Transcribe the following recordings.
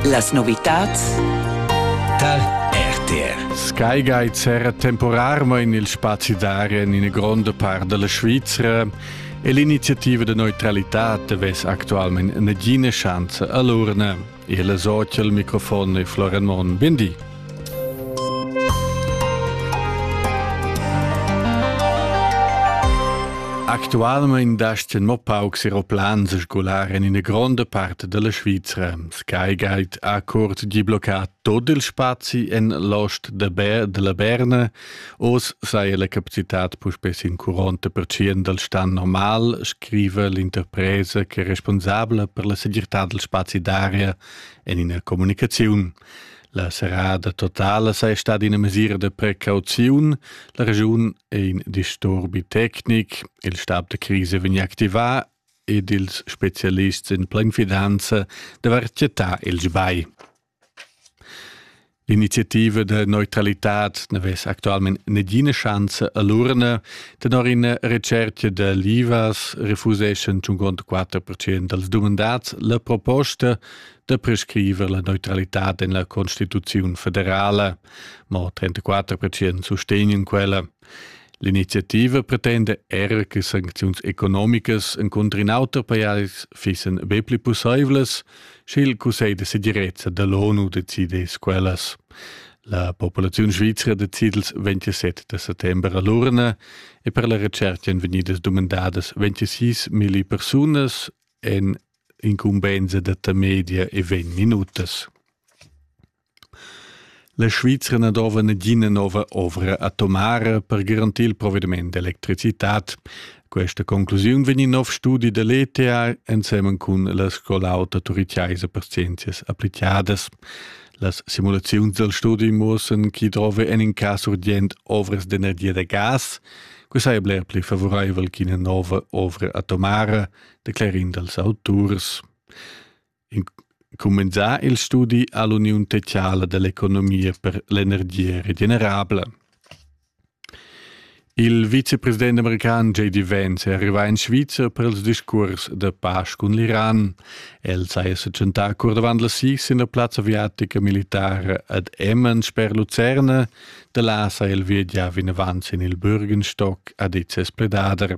Las novitads tar RTR. Sky Guide serra temporarmain il spazi d'aria en ina gronda part della Svizra e l'iniziativa de neutralità vess actualmente nagina chance a l'urna. Il socia al microfon è Florian Mon. Bindi. Actualmein dast mo paucs aeroplans sgular en ina gronda parte della Svizra. Sky Guide ha curt di bloccat tot il spazi en l'ost de Ber della Berna, os saja la capacitat puspè in 40% del stan normal, scrive l'interpresa che è responsabla per la segirtà del spazi d'aria en ina comunicazione. La serrada totala sei stada ina mesira de precauziun. La regiun è in disturbi tecnic, il stab de crisi vegn activà ed ils specialists in plain fidanza devar cetà il sbai. L'iniziativa de neutralitad n'avess actualmente negina chance a l'urna, tenor in recerca de l'IVAS refuseschan 54% dels dumandats la proposta da prescriver la neutralitad en la Constituziun federala, ma 34% sustegnen quella. L'iniziativa pretende era che sancziuns economicas en contro in auter pajais fissen be pli pussaivlas, sche il Cussegl de segirezza dall'ONU decidess quellas. La populaziun svizra decid il 27 de settembre a l'urna e per la recerca èn vegnidas dumandadas 26 milli persunas en incumbensa da tamedia e vegn minutas. La Svizra na dova nagina nova ovra atomara per garantir il provvediment d'electricitat. Questa conclusiun vegn in nov studi dell'ETA ensemen cun la Scola auta turiciaisa per scienzias applicadas. Las simulazioni del studi muossen chi drove en in cas urgent ovras d'energia da gas, que sai bler pli favoraivel che una nova ovra atomara declarind als auturs. Cumenzà il studi ha l'Uniun Teciala dell'Economia per l'energia regenerabla. Il vicepresident american J.D. Vance è arrivato in Svizzera per il discurs de pace con l'Iran. El s'ha sechentà cur davant la SIS in la plazza aviatica militare ad Emmen sper Lucerne, da là s'ha el viagià vinavant in il Bürgenstock ad Itses Pledader.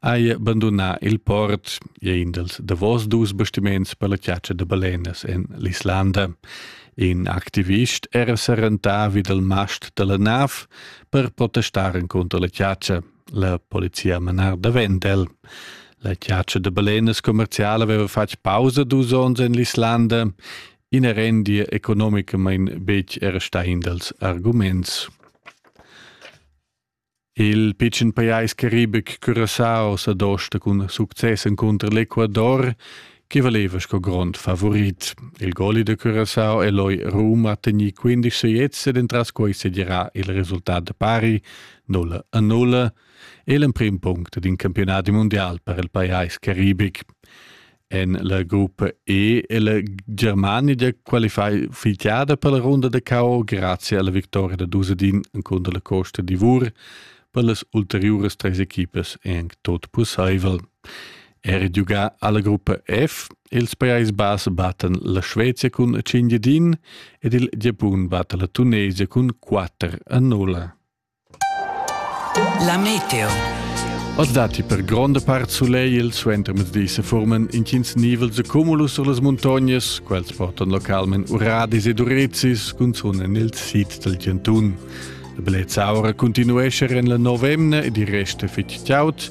hai bandunà il port, è in dels davos dus bastiments per la chiaccia de balenas en l'Islanda. In activist era serentà vid il mast de la nav per protestar contro la chiaccia. La polizia manar davent el. La chiaccia de balenas commerciale aveva fatg pausa dus ons en l'Islanda. In rendia economica mein bec era sta in dels arguments. Il pitschen pajais caribic Curaçao sa dosta cun success encunter l'Ecuador che valeva sco grond favorit. Il goli de Curaçao e loi Roma ha tegnì 15 seiets ed entras quei sedirà il resultat da pari 0 a 0 e l'emprim punct d'in campionat mundial per il pajais caribic. en la gruppa E è la Germania qualificada per la runda da KO grazie alla vittoria da Dusedin contro la Costa d'Ivor per las ulteriuras tres equipas è anche tot possibel. Er giugà alla gruppa F ils Pajais Bass battan la Svezia cun 5 din ed il Giapun batta la Tunisia cun 4 a 0. La meteo. As datti per gronda part sulegl suenter mezdi se forman intgins nivels e cumulus sur las muntognas, quels portan localment uradis ed urezis, cunzun en il sid del Giantun. La bellezza aura continuesce en la novemna ed il rest fitg chaud,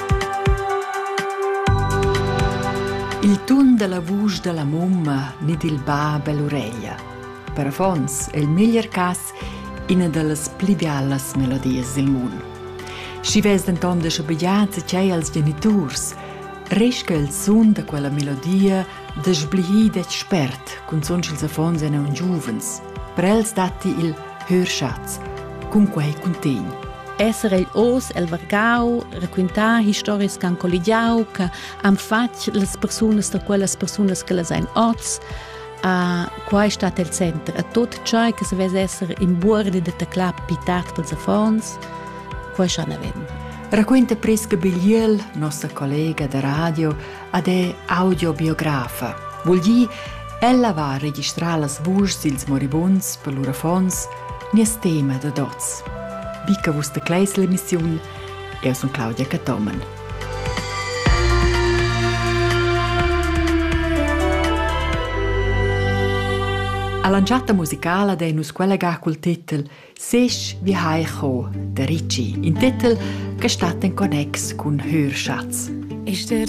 Il tun dalla vusch dalla mumma ni dil bab ell'ureglia. Per affons è il meglier cass ina dallas pli bialas melodias dil mund. Schi vess denton de schabegliar tgei als geniturs, resta il sun da quella melodia da sblihir detg spert, cunzun ch'ils affons ein aunc giuvens. Per els datti il hörschatz, cunquei cuntegn. Esser ei oz el vargau, raquintar historias che han colligiau, che han fatg las persunas da quellas persunas che las ein oz, Uh, qua è stato il center a tutto ciò che se vede essere in buordi de teclà pitat per affons, qua è schon avem. Racconta Prisca Bigliel, nostra collega da radio, ad è audiobiografa. Vul dir, ella va a registrar las vuschs dils moribunds per lur affons, nies tema da dots. Wie che vus decleis l'emissiun, eu sun Claudia Cattomen. A lanciata musicala dei nus collegà col titel Sech wie Heiko, der Ritchie, in titel che stat in connex cun Hörschatz. Ist der